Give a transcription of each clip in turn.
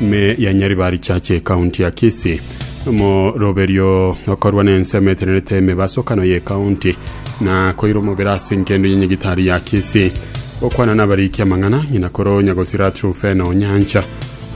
Ime ya Nyaribari Church ekaunti ya Kisii. Omoroberio okorwa na ensemo etenerete emebasokano ye ekaunti na koira omobere ase enkendo ye nyagitari ya Kisii. Okwana na abariki amang'ana ng'ina koro nyagosira True Fena Onyancha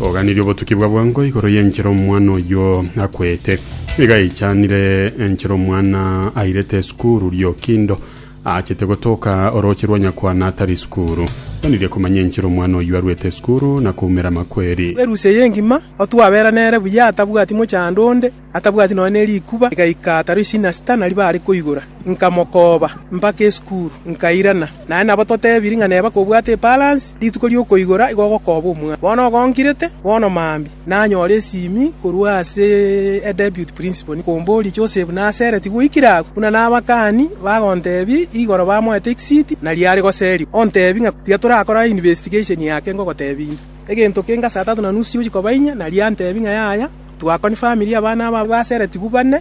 oganirie obotuki bwa bwango igoro ye enchera omwana oyio akwete. Niga yaichanire enchera omwana airete esukuru Riokindo Aachete gotoka orooche rwa nyakwana atari sukuru. Tonirie komanya enchera omwana oyio arwete sukuru na koumera amakweri. Erusia eye engima, otwabera nere buya, atabwati mochando onde, atabwati nonya ne rikuba, igaika ataro isina sita naria baare koigora. Nkamokooba mpaka esukuru, nkairana. Naye nabo totebirie ng'a neba kobwate epalansi, rituko ri'okoigora igo ogokooba omwana. Bono ogonkirete, bono mambia. Nanyore esimi korwa ase a Deputy Principal komboria, Joseph nasere tigoikire agwo? Buna nabakani bagontebia igoro bamoete exit na riare goseria, ontebie ng'a tiga torakora investigation yake ngogotebia inde. Egento kenge saa tatu na nusu siochi koba inya, naria antebia ng'a yaya twakoni family abana aba baseretigwe bane,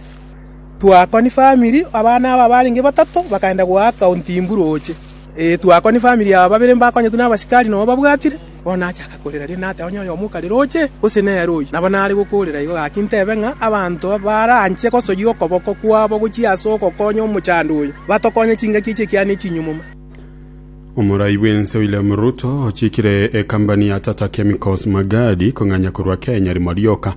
twakoni family abana aba barenge batato bakaenda goaka ontimburu oche. Ee twakoni family aba babere mbakonyetwe nabasikari noo babwatire. Bono nachaka korera riria nateba, Onye oyomo okarera oche, gose nere oyio. Nabo nare gokoorera igo gaki ntebe ng'a abanto baranche gosoyia okoboko kwabo gochia ase ogokonya omochando oyo, batokonye chingaki echi ekiana echinyumuma. Omorai bw'ense William Ruto ochikire ekambani ya Tata Chemicals Magadi kong'anya korwa Kenya rimo rioka,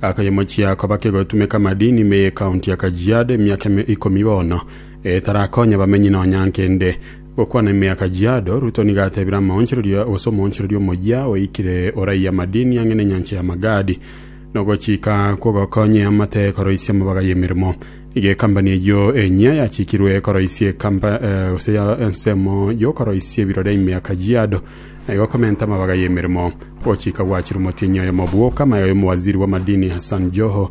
akayemochia koba kegotumeka madini me County ya Kajiado emiaka ikomi bono etarakonya abamenyi nonya nkende. Gokwana emiaka Giado, Ruto nigo atebire amaonchorerio gose omoonchoreria omoyia oikire oraiyo amadini ang'e nenyancha ya Magadi, nogochika kw'ogokonya eamate ekoroisia amabaga y'emeremo. Nigo ekambani eyio enyia yachikirwe koroisia ekampa, gose ya ensemo y'okoroisia ebirore emiaka Giado, na igo komenta amabaga y'emeremo. Ogochika gwachirwe omotienyi oyomo bwoka, amaega y'omowaziri bw'amadini Hassan Joho,